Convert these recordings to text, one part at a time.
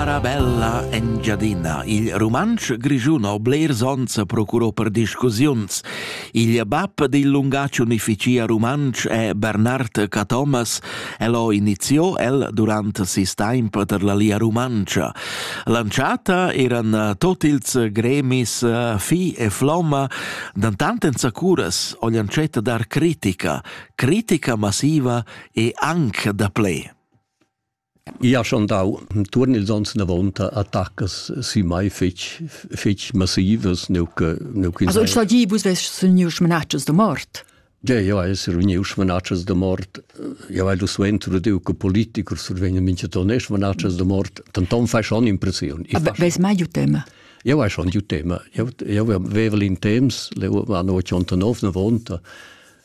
Arabella Engiadina. Il rumantsch grischun ho blers ons a procuro per discussiuns. Il bab dil lungatg unificia rumantsch è Bernard Cathomas. El ho iniziò el durant sis temp per la Lia Rumantscha. Lanciata eran tot ils gremis Fi e Flomma, dantant en sacuras ho lancet dar critica, critica massiva e anche da ple. Ia schon dau tuorn ils ons inavonta attaccas sü mai fetg fetg massivas neu che neu che Also sta gi vus vess suniu schmanatschas da mort. Ja, ja, es reuniu schmanatschas da mort. Ja, weil du suenter du che politiker survegn mincha ton ne schmanatschas da mort, dann ton fai schon impressiun. Aber ves mai ju tema? Ja, vai schon ju tema. Ja, ja, vevel in temps, le va no 89 na vonta.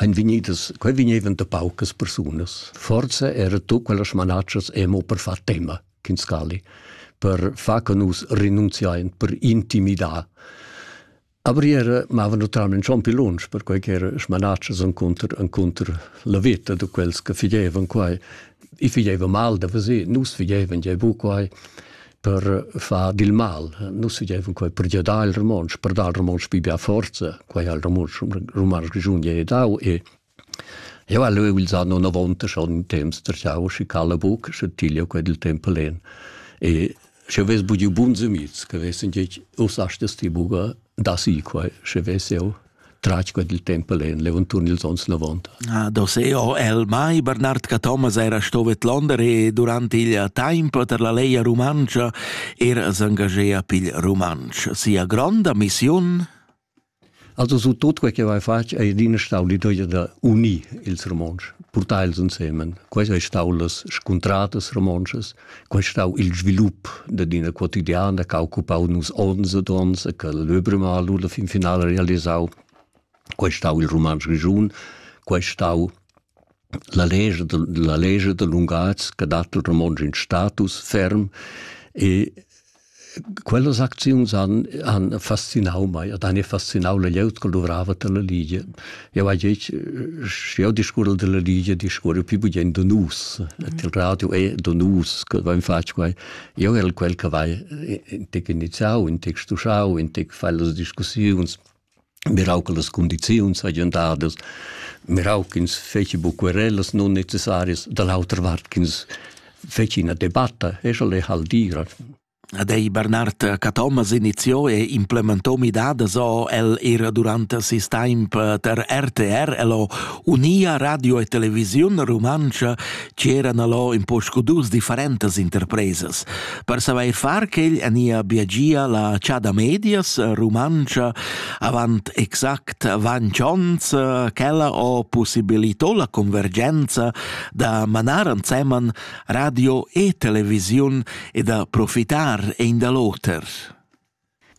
ein vegnidas, quei vegnevan da paucas persunas. Forza era tu quellas manatschas emo per far tema, Kinskali, per far che nus renunziain, per intimidar. Aber era mava naturalmente schon più lunch, per quei che era smanatschas encontr, encontr la vita de quels che figevan quai. I figevan mal da vesir, nus figevan je bu quai. per far dil mal. Nus vegevan quei per giadar il romontsch, per dar il romontsch pli bia forza, quei ha il romontsch romansch grischun ge dau e Eu ha leu ils anno 90 schon in temps terschau schi cala buc sche tiglio quei dil tempo len. E sche ves bugiu buns amics, che vessen gec us astes ti buga da si quei, sche ves eu tratg quel il tempo en levantun ils ons lavont. Ah, do se o el mai Bernard Cathomas era stovet Londra e durante il tempo per la Leia Rumancia era s'engagea pil Rumanch. Sia gronda missiun Also so tot quel che vai fatg è adina stau l'idea da unir ils romontsch, portar els insieme. Queste è stato las scontratas romontschas Quei stau il svilup dad ina quotidiana che ha occupau nus onns ed onns e che l'Öbremal la fin finala realisau. Quei stau il Rumantsch Grischun, quei stau la legge, la legge da lungatgs che dat il romontsch in status ferm e Quellas acziuns han, han fascinau mei ed han fascinau la glieud che luvrava dalla Ligia. Jau hai detg, sche jau discurre dalla Ligia, discurre più bugen da nus. Et il radio è da nus che vain fatg quai. Io el quel che vai intec iniziau, intec stuschau, intec fai las discussiuns, mirau che las condiziuns hagien dadas, mirau ch'ins feci buc querellas non necessarias, da l'autra vart ch'ins feci ina debatta, e sche le hal dira. Ad ei Bernard Cathomas iniziò e implementò midadas o el era durante sis temp per RTR, el ho unia radio e televisiun rumantscha ch'eran allò in po scudus differentas interpresas per savair far quel ania biagia la chada medias rumantscha avant exact vanch ons ch'ella ho possibilitò la convergenza da manar anseman radio e televisiun e da profitar ein da l'oter.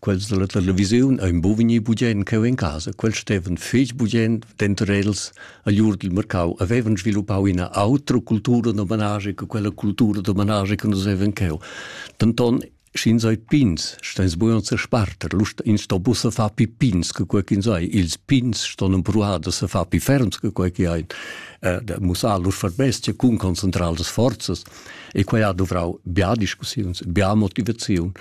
Quels dalla televisiun ein bu vegnir bugien cheu en casa. Quel stevan fetg bugien denter els agl ur dil mercau havevan sviluppau ina autra cultura d'homenage che quella cultura d'homenage che nus havevan cheu. Denton sch'ins ei pins, steins bugen sesparter, lust ins sto bu se far pi pins che quei ch'ins ei. Ils pins ston empruar da se far pi ferms che quei che ein. Eh, da mussar lur verbestia cun concentrar las forzas e quei ha duvrau bia discussiuns, bia motivaziun.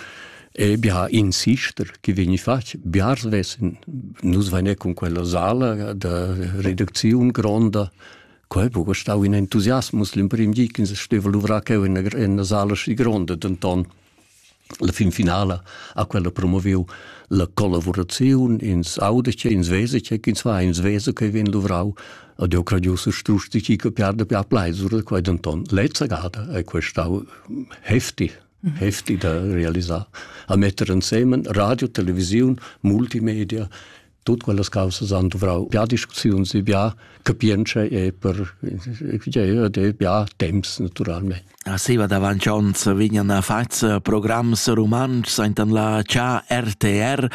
E bia in sister che vegni fatg, biars vessen nus vegnir cun quella sala da reducziun gronda. Quei ha buca stau in entusiasmus l'emprim di che steva luvrar cheu in ina sala schi gronda, denton la fin finala ha quella promoviu la collaboraziun ins audice, ins vesice, ins va ins vese che vien luvrau ad eu gradiusa strusti chi capiar da pià pleisura, quai denton lezza gada è questau hefti heftig da realisar, a metter ensemen radio, televisiun, multimedia, tut quellas causas han dovrau bia discussiuns e bia capientscha e per de bia temps naturalmente. A seva davanti ons vignan fats programs romans enten la CA RTR.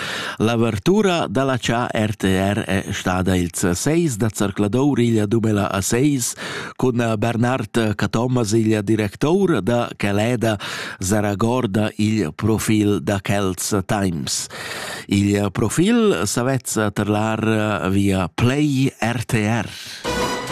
L'avertura dalla CA RTR è stada ils 6 da Zarcladour igl dumela a 6, cun Bernard Cathomas, il director da Caleda, saragorda il profil da Celts Times. Il profil savetz terlar via Play RTR.